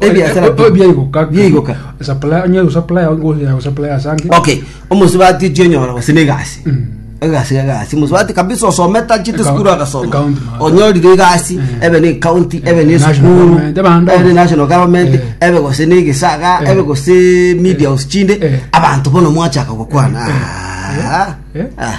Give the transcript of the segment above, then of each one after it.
Ebiasara Oye- oye bi- biaigoka biaigoka. Supply- onye usupply, onye usupply asange. okay omosubati tionyora gose negasi Mm. egasi egasi mosubati kabisa osomete achite Eka- sukuru agasoma account master. onyorire egasi Mm. ebe ne county ebe ne National sukuru government, ebe ande ebe ne onsi. national government Eh. ebe gose ne egesaga Eh. ebe gose media house chinde Eh. abanto bono mwachaka gokwana Eh. Ah. Eh. Ah.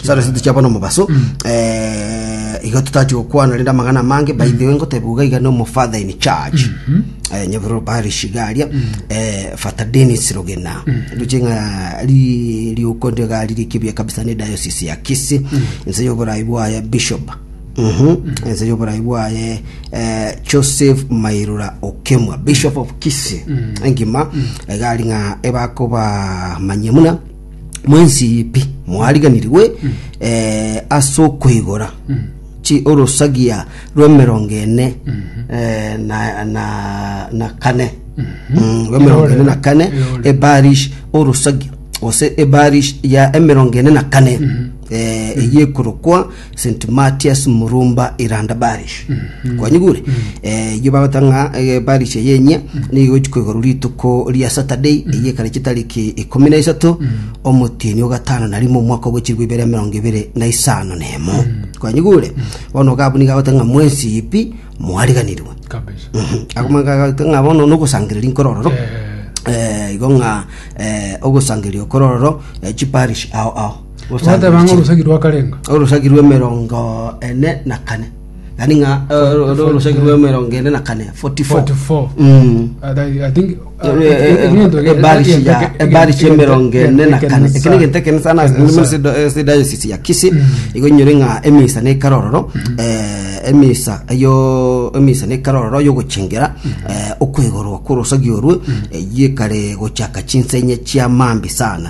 Chisaro ici tichiaba nomobaso eh, igo totati gokwana rende amang'ana amange by the way ngoteba iga iga nomo father in charge eh, nyabiro bari shigaria eh, fata denis rogena nduche ng'a ri riuko ndio gari rikibia kabisa ne diocese ya kisi nse yoborai bwaye bishop Mhm. ense yoborai bwaye eh, joseph mairura okemwa bishop of kisi engima egari ng'a ebakoba manyemuna mwensipi mwariganirigwe eh, ase okoigora chi- orosagia rw'emerongo ene eh, na, na, na kane Mm, rw'emerongo ene na kane Eore. ebarish orosagia gose ebarish ya emerongo ene na kane eh, eyekorokwa St Matias Murumba Iranda Parish. Kwanyigure? Eh, iyo bagota ng'a eh, parish eye enye nigo igochikwa igoro rituko ria Saturday eye ekare chitariki ikumi na isato omotini o gatano na rimo omwaka ogochirwa ibere emerongo ibere na isano na emo. Kwanyigure? Bono okabu nigo agota ng'a mwensi ipi mwariganirwe. kabisa Akomagagota ng'a bono nogosangereria nkorororo. Eh, Eh, igo ng'a eh, ogosangeria okorororo eh, chiparish ao ao. Goteba ng'a orosegi rwakarenga. orosagi rw'emerongo ene na kane yani ng'a eh, ro- ro- orosagi rw'emerongo ene na kane 44 44 Mm. And I- I think- ebari chi'emerongo ene na kane ekero egento ekene sana sedayosisi ya kisi igo nyore ng'a emisa nekare ororo eh, emisa eyo emisa nekare ororo yogochengera eh, okwegorwa kw'orosagi orwe eyio ekare gochaka chinsenye chi'amambi sana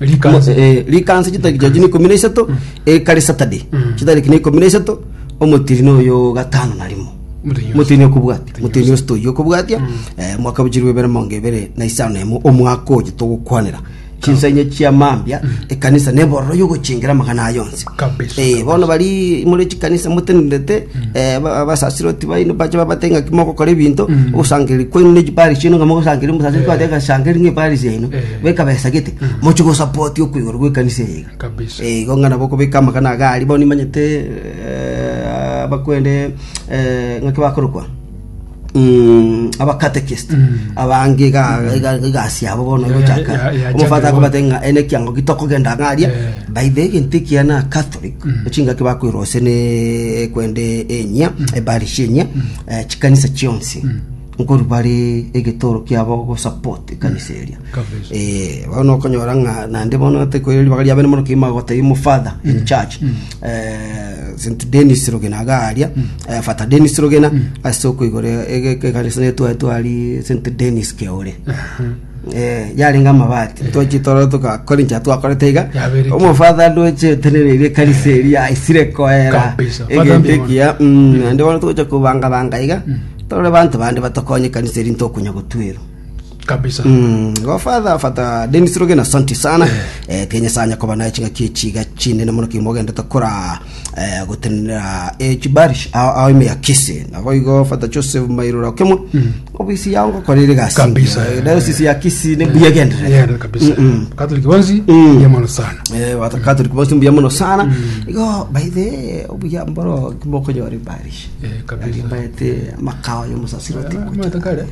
Likansi. Mo- eh, likansi chitariki chiacho na ikomi na isato ekare saturday chitariki na ikomi na isato omotirini oyo gatano na rimo Motirini oyo. motirini okobwatia motirini osito oyo okobwatia eh, mwaka bochirwe ebere mongo ebere na isano na emo omwaka oyo togokwanera chinsanya chiamambia ekanisa nebororo yogochengera amagana ayo onsi kabisa. Eh, bono bari more chikanisa motenenete eh, aba- abasasiroti baino bache babate ng'aki mogokora ebinto ogosangeri kwaino ne chipari chiaino ng'a mogosangeri omusasiri kwate agasangeri ng'a epari yaino Eh. bekabesa gete mochi gosapoti okoigoro gw'ekanisa eye iga Kabisa. Eh, igo ng'ana bokobeka amagana aga aria bono nimanyete eh, abakwende eh, ng'aki bakorokwa Mm, abakatekist abange ga- ga- egasi yabo bono Ya- gochaka ya- ya- omofata ya- akobate ng'a ene ekiango gitokogenda ng'aria Eh. by the egento ekiana catholic ochingaki bakwirwa ase ne kwende enyia ebarishi enyia eh, chikanisa chionsi nkori bari egetoro kiabo gosupport ekanisa eria Kabisa. Eh, bono okonyora ng'a nande bono tekoeri ribaga riabene mono kima gotebia omofadha in church eh, St Denis Rogena aga aria eh, Fata Denis Rogena ase okoigora ekanisa netwae twari St Denis Keore Eh, yarenga amabati twachi toro togakora enchera twakorete iga Yaberete. omofadha ndoche tenereire ekanisa eria aisire koera Kabisa. Father egento Ndimoni. ekiya mm, naende bono togocha kobangabanga iga torore banto bande batokonye ekanisa eri ntokonya gotwerwa kabisa Mm, go father fata Dennis Rogena santi sana eh, kenya sanya koba naye chinga kie chiga chinde na mono kimwe ogendete kora eh, gotenera eh, chibarish ao ao ime ya kisi nabo igo fata Joseph Mairura okemo obisi yao ngokorire gasi Kabisa, eh, eh. diocese ya kisi ne buya gendere yenda kabisa katoliki bonsi Mm. yamano sana eh wata Catholic bosi mbuya mono sana igo by the way, obuya mboro kimokonyore barish Eh, kabisa. baete makao ya musasiro tiko matakare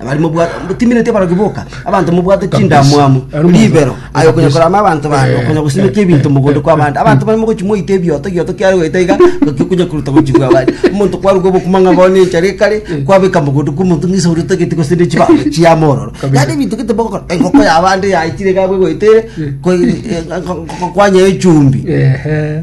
Abari mobwate timineti abarogi boka, abanto mobwate chindamwamu, ribero, aye okonya korama abanto bande, okonya gosimeka ebinto mogondo kw'abande. Abanto bare mogochi moite ebioto, gioto kiare goeta iga, goki okonya koruta gochigwa abande. Omonto kwaruga obokima ng'a bono enchara ekare, kwabeka mogondo kw'omonto ng'a esauri otagete gose ne chiba chiama ororo. Yaani ebinto gete bogokora, engoko ya abande yaitire iga abwo egoeta ere, ko- e- e- ko- ko- kwanyea echumbi. Ehe.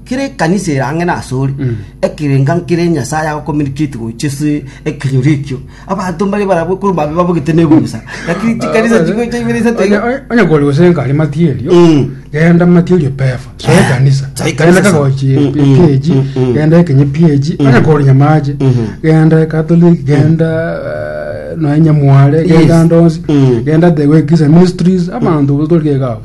Kera ekanisa ere ang'e nasore, ekerenga nkere Nyasae aya gocommunicate gochia ase ekenyoro ekio. Abanto mbare barabwo korwa babe babogete nebusa. Lakini chikanisa chigocha ibere isato iga. onye kore gose nkari material Mm. genda material pefa so Eh, ekanisa so ekanisa genda so. kagochi Mm, mm, ph mm, mm. genda ekenye ph onye kore nyamache Mhm. genda catholic genda eh, nonya mware genda Yes. ndonsi Mm. genda the way Christian ministries abanto toriegao